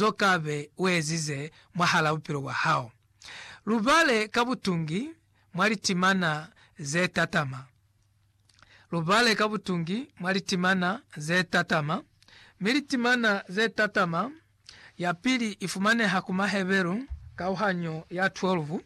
zo kabe uezize mwahala bupilo bwa hao. Lubale ka butungi mwa litimana ze tatama. Lubale ka butungi mwa litimana ze tatama, mi litimana ze tatama ya pili ifumaneha ku Maheberu kauhanyo ya 12.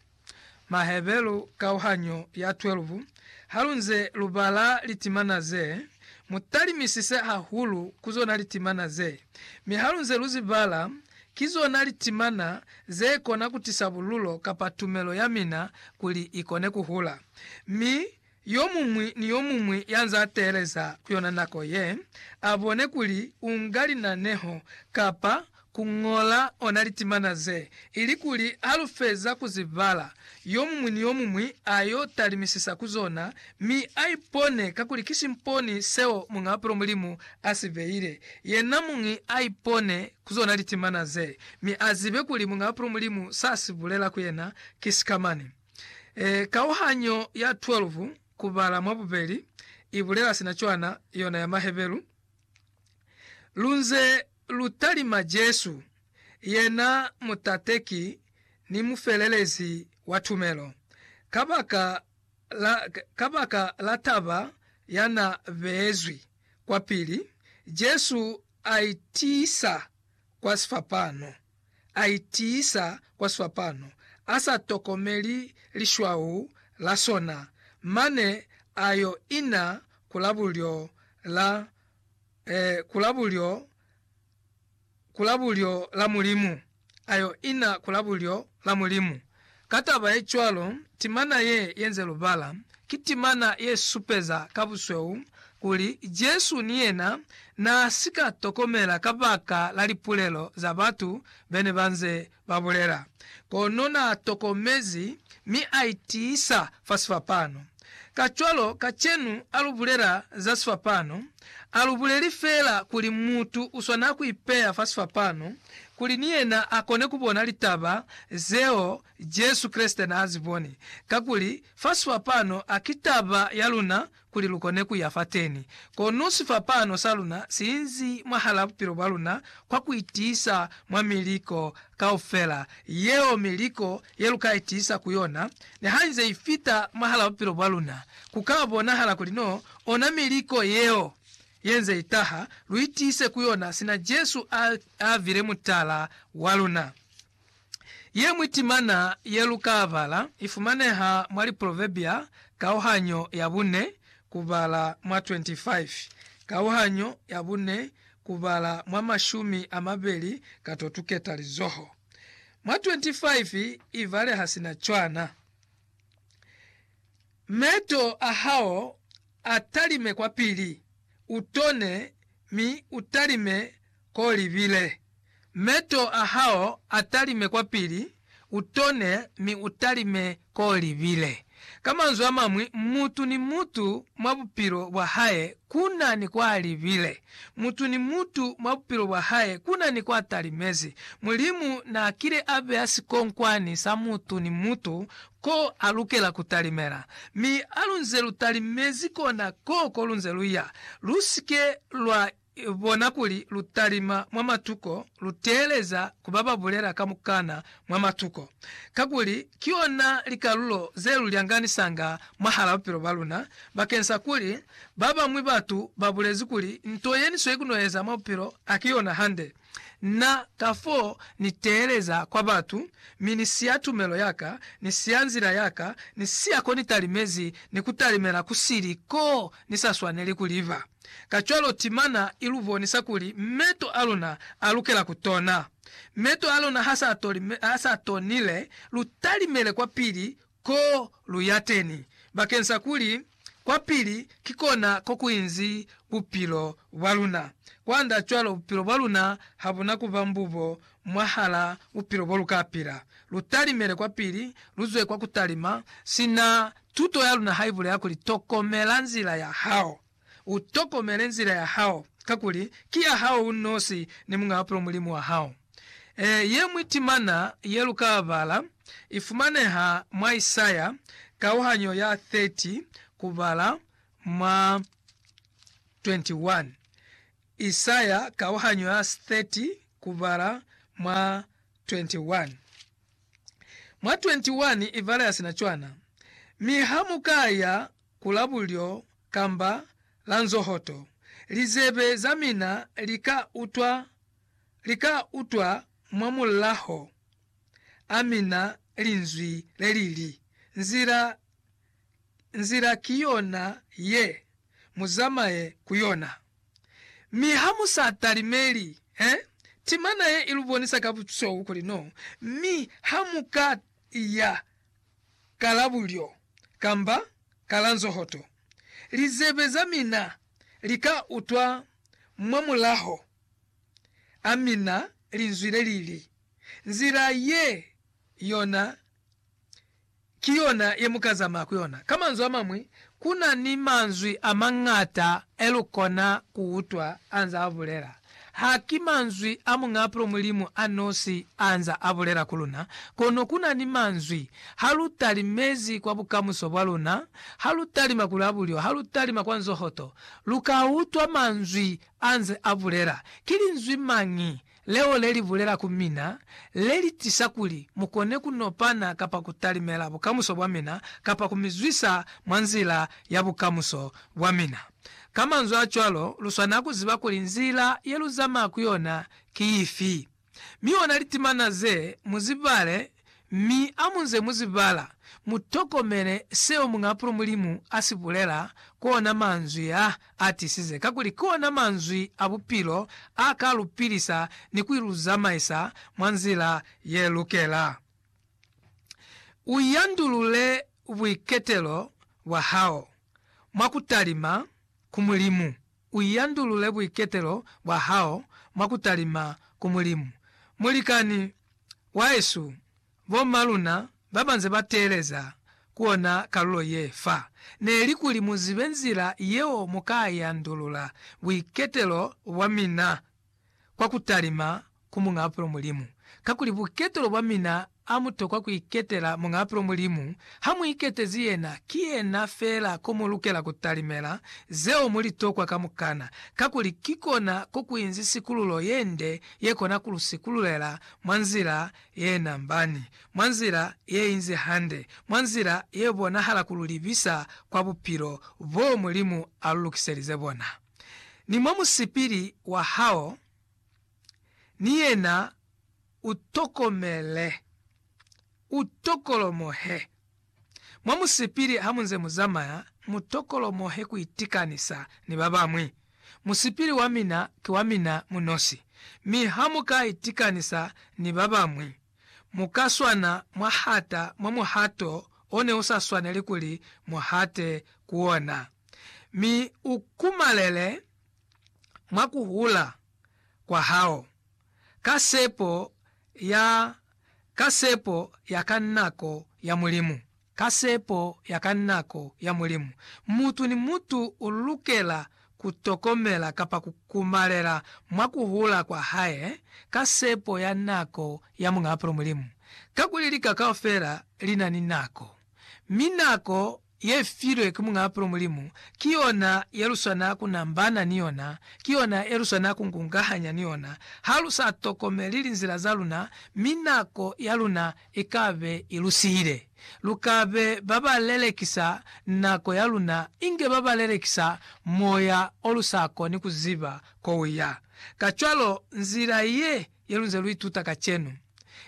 Maheberu kauhanyo ya 12 Halunze lubala litimana ze, mutalimisise hahulu ku zona litimana ze. Mi halunze luzibala, ki zona litimana zekona kutisa bululo kapa tumelo yamina kuli ikone kuhula. Mi Yomuñwi ni yomuñwi yanze ateeleza ku yona nako ye, abone kuli unga linaneho kapa kuñola ona litimana ze, ilikuli halufeza kuzibala, yomuñwi ni yomuñwi ayo talimisisa ku zona mi aipone kakuli ki simponi seo Muñaa Pulo Mulimu asibeile. Yena muñwi aipone ku zona litimana ze, mi azibe kuli Muñaa Pulo Mulimu sasibulela ku yena ki sikamani. E, kauhanyo ya 12 ku bala mwa bubeli i bulela sina cwana, yona ya Maheberu, Lu nze lu talima Jesu, yena Mutateki ni Mufelelezi wa tumelo, kabaka la, kabaka la taba ya na beezwi kwapili, Jesu a itiisa kwa sifapano. a itiisa kwa swapano, a sa tokomeli lishwau la sona, mane a yo ina ku la bulyo la, eh, ku la bulyo, ku la bulyo la Mulimu, a yo ina ku la bulyo la Mulimu. Ka taba ye cwalo, timana ye yenze lubala ki timana ye supeza ka busweu kuli Jesu ni yena n'a si ka tokomela kabaka la lipulelo za batu be ne ba nze ba bulela. Kono n'a tokomezi mi a itiisa fa sifapano. Kacwalo, kacenu ha lu bulela za sifapano, ha lu buleli feela kuli mutu u swanela ku ipeya fa sifapano kuli ni yena a kone ku bona litaba zeo Jesu Kreste n'a zi boni. Kakuli, fa sifapano ha ki taba ya luna kuli lu kone ku ya fateni. Kono sifapano sa luna si inzi mwahal'a bupilo bwa luna kwa ku itiisa mwa miliko kaufela yeo, miliko ye lu ka itiisa ku yona, ni ha i nze i fita mwahal'a bupilo bwa luna, ku ka bonahala kuli n'o ona miliko yeo ye nze i taha lu itiise ku yona sina Jesu a a bile mutala wa luna. Ye ñwi timana ye lu ka bala i fumaneha mwa Liproverbia kauhanyo ya bune kubala mwa 25, kauhanyo ya bune kubala mwa mashumi a mabeli ka to tuketa lizoho. Mwa 25 ibale ha si na cwana. Meto a hao a talime kwa pili, u tone, mi u talime k'o libile. Meto a hao a talime kwa pili, u tone, mi u talime Ko libile. Ka manzwi a mañwi, mutu ni mutu mwa bupilo bwa hae ku na ni kwa libile. Mutu ni mutu mwa bupilo bwa hae ku na ni kwa talimezi. Mulimu n'a kile a beya sikonkwani sa mutu ni mutu ko a lukela ku talimela. Mi ha lu nze lu talimezi kona k'o ko lu nze lu ya, lu si ke lwa bona kuli lu talima mwa matuko, lu teeleza ku ba ba bulela kamukana mwa matuko, kakuli ki yona likalulo ze lu lyanganisanga mwahal'a bupilo bwa luna, bakeng sa kuli ba bañwi batu ba bulezi kuli nto ye ni sweli ku no eza mwa bupilo ha ki yona hande. Na, kafoo, Ni teeleza kwa batu, mi Ni siya tumelo yaka, Ni siya nzila yaka, Ni siya ko Ni talimezi, ni ku talimela ku sili ko Ni sa swaneli ku liba. Kacwalo timana i lu bonisa kuli meto a luna a lukela ku tona. Meto a luna ha sa toli, ha sa tonile, lu talimele kwapili Ko lu ya teni bakeng sa kuli kwa pili ki kona ko ku inzi bupilo bwa luna. Kwanda cwalo bupilo bwa luna ha bu na ku ba mbubo mwahala bupilo bo lu ka pila. Lu talimele kwa pili, lu zwe kwa ku talima, sina tuto ya luna ha i bulela kuli, Tokomela nzila ya hao. U tokomele nzila ya hao, kakuli ki ya hao u nosi ni Muñ'a Bupilo Mulimu wa hao. Ee, ye ñwi timana ye lu ka bala i fumaneha mwa Isaya kauhanyo ya 30 kubala mwa 21. Isaya kauhanyo ya 30 kubala mwa 21. Mwa 21 i bala ya sina cwana, Mi ha mu ka ya ku labulyo kamba la nzohoto, lizebe za mina li ka utwa, li ka utwa mwa mulaho a mina Linzwi le li li, Nzila, nzila ki yona ye, mu zamaye ku yona. Mi ha mu sa talimeli, he, timana ye i lu bonisa ka busweu kuli no, mi ha mu ka i ya. ka la bulyo, kamba ka la nzohoto, lizebe za mina li ka utwa mwa mulaho a mina linzwi le li li, Nzila ye yona ki yona ye mu ka zamaya ku yona. Ka manzwi a mañwi, ku na ni manzwi a mañata e lu kona ku utwa a nzaa bulela. Ha ki manzwi a Muñ'apro Mulimu a nosi a nza a bulela ku luna, kono ku na ni manzwi, Ha lu talimezi kwa bukamuso bwa luna, ha lu talima ku labulyo, ha lu talima kwa nzohoto, lu ka utwa manzwi a nze a bulela. Ki linzwi mañi leo le li bulela ku mina, le li tisa kuli mu kone ku nopana kapa ku talimela bukamuso bwa mina, kapa ku mi zwisa mwa nzila ya bukamuso bwa mina? Ka manzwi a cwalo, lu swanela ku ziba kuli nzila ye lu zamaya ku yona ki ifi, mi ona litimana ze mu zi bale, mi ha mu nze mu zi bala, mu tokomele seo Muñ'apulu Mulimu a si bulela, ku ona manzwi a a tisize, kakuli ki ona manzwi a bupilo a ka lu pilisa ni ku lu zamaisa mwa nzila ye lukela. U yandulule buiketelo bwa hao. mwa ku talima ku Mulimu, u yandulule buiketelo bwa hao mwa ku talima ku Mulimu. Mulikani wahesu, bo ma luna ba ba nze ba teeleza ku ona kalulo ye fa, ne li kuli mu zibe nzila yeo mu ka yandulula buiketelo bwa mina kwa ku talima ku Muñaapelo Mulimu, kakuli buketelo bwa mina a mu tokwa ku iketela Muñaapelo Mulimu, ha mu iketezi yena, ki yena feela ko mu lukela ku talimela zeo mu li tokwa kamukana, kakuli ki kona ko ku inzi sikululo ye nde ye kona ku lu sikululela mwa nzila ye nambani, mwa nzila ye inzi hande, mwa nzila ye bonahala ku lu libisa kwa bupilo boo Mulimu a lu lukiselize bona. ni mwa musipili wa hao ni yena u tokomele, u tokolomohe. Mwa musipili ha mu nze mu zamaya, mu tokolomohe ku itikanisa ni ba bañwi. Musipili wa mina ki wa mina mu nosi, mi ha mu ka itikanisa ni ba bañwi, Mu ka swana mwa hata mwa muhato o ne u sa swaneli kuli mu hate ku ona, mi u kumalele mwa ku hula kwa hao, ka sepo ya, ka sepo ya ka nako ya Mulimu. Ka sepo ya ka nako ya Mulimu, mutu ni mutu u lukela ku tokomela kapa ku kumalela mwa ku hula kwa hae ka sepo ya nako ya Muñ'apelo Mulimu. Kakuli lika kaufela li na ni nako, mi nako ye filwe ki Muñ'apelo Mulimu ki yona ye lu swana ku nambana ni yona, ki yona ye lu swana ku ngungahanya ni yona. Ha lu sa tokomeli linzila za luna, mi nako ya luna ikabe i lu sihile. Lu ka be ba ba lelekisa nako ya luna inge ba ba lelekisa moya o lu sa koni ku ziba ko u ya. Kacwalo, nzila ye, ye lu nze lu ituta kacenu,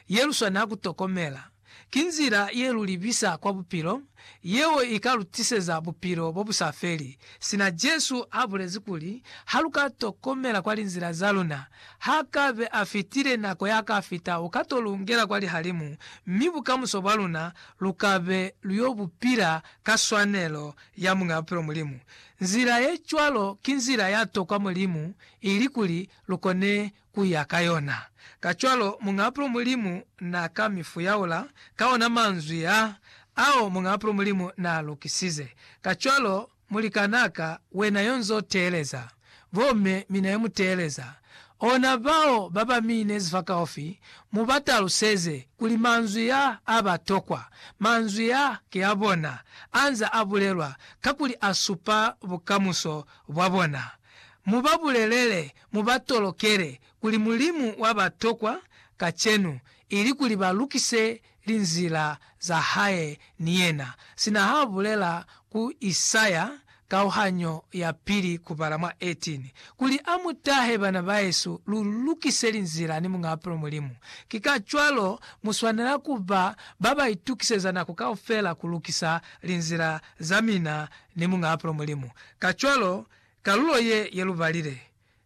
ye lu swanela ku tokomela, ki nzila ye lu libisa kwa bupilo yeo i ka lu tiseza bupilo bo bu sa feli, sina Jesu a bulezi kuli, Ha lu ka tokomela kwa linzila za luna, ha ka be a fitile nako ya ka fita u ka to lu ngela kwa lihalimu, mi bukamuso bwa luna lu ka be lu yo bu pila ka swanelo ya Muñ'a Bupilo Mulimu. Nzila ye cwalo ki nzila ya tokwa Mulimu ili kuli lu kone ku ya ka yona. Kacwalo, Muñ'apolo Mulimu n'a ka mi fuyaula ka ona manzwi a, ao Muñ'apolo Mulimu n'a lukisize. Kacwalo, mulikan'a ka, wena y'o nz'o teeleza, bo me, mi na ye mu teeleza, ona bao ba ba mi inezi fa kaufi, mu ba taluseze kuli manzwi a a ba tokwa, manzwi a ki a bona, a nz'a a bulelwa, kakuli a supa bukamuso bwa bona. Mu ba bulelele mu ba tolokele kuli Mulimu wa ba tokwa kacenu, ili kuli ba lukise linzila za hae ni yena, sina ha bulela ku Isaya kauhanyo ya pili kubala mwa 18, kuli a mu tahe, Bana bahesu, lu lukise linzila ni Muñ'a Bapilo Mulimu. Ki kacwalo mu swanela ku ba ba ba itukiseza nako kaufela ku lukisa linzila za mina ni Muñ'a Bapilo Mulimu, kacwalo Kalulo ye ye lu balile,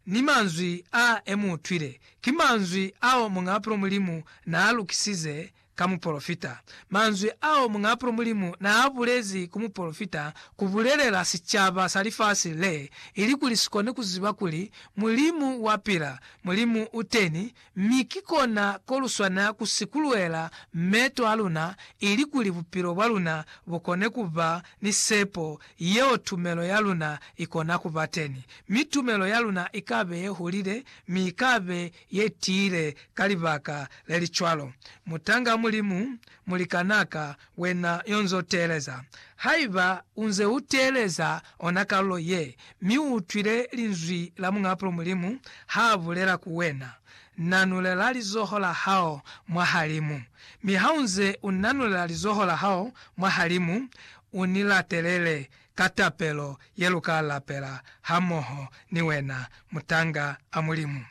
ni manzwi a e mu utwile, ki manzwi ao Muñapulo Mulimu naa lukisize ka mupolofita. Manzwi ao Muñapulo Mulimu naa bulezi ku mupolofita ku bulelela sicaba sa lifasi le, ilikuli si kone ku ziba kuli Mulimu wa pila, Mulimu u teni, Mi ki kona ko lu swanela ku sikuluela meto a luna ilikuli bupilo bwa luna bu kone ku ba ni sepo yeo tumelo ya luna i kona ku ba teni. Mi tumelo ya luna i ka be ye hulile, mi i ka be ye tiile ka libaka le li cwalo. Mutanga Mulimu, mulikanaka, Wena yo nz'o teeleza. Haiba u nze u teeleza ona kalulo ye, mi u utwile Linzwi la Muñaapulo Mulimu ha bulela ku wena, Nanulela lizoho la hao mwa halimu. Mi ha u nze u nanulela lizoho la hao mwa halimu, u ni latelele ka tapelo ye lu ka lapela hamoho ni wena, Mutanga a Mulimu.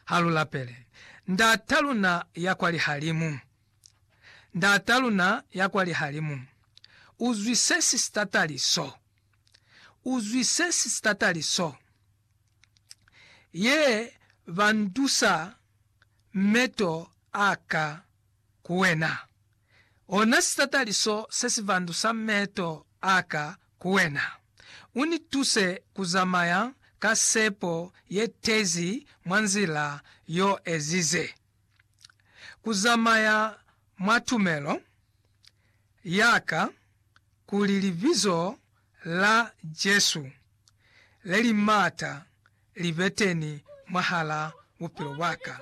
Ha lu lapele. Ndat'a luna ya kwa lihalimu. Ndata luna ya kwa lihalimu, u zwisesi sitatali so. U zwisesi sitatali so. Ye ba ntusa meto a ka ku wena. Ona sitatali so se si vandusa meto a ka ku wena. U ni tuse ku zamaya ka sepo ye tezi mwa nzila y'o ezize. ku zamaya mwa tumelo ya ka kuli Libizo la Jesu le li m'ata li be teni mwahal'a bupilo bwa ka.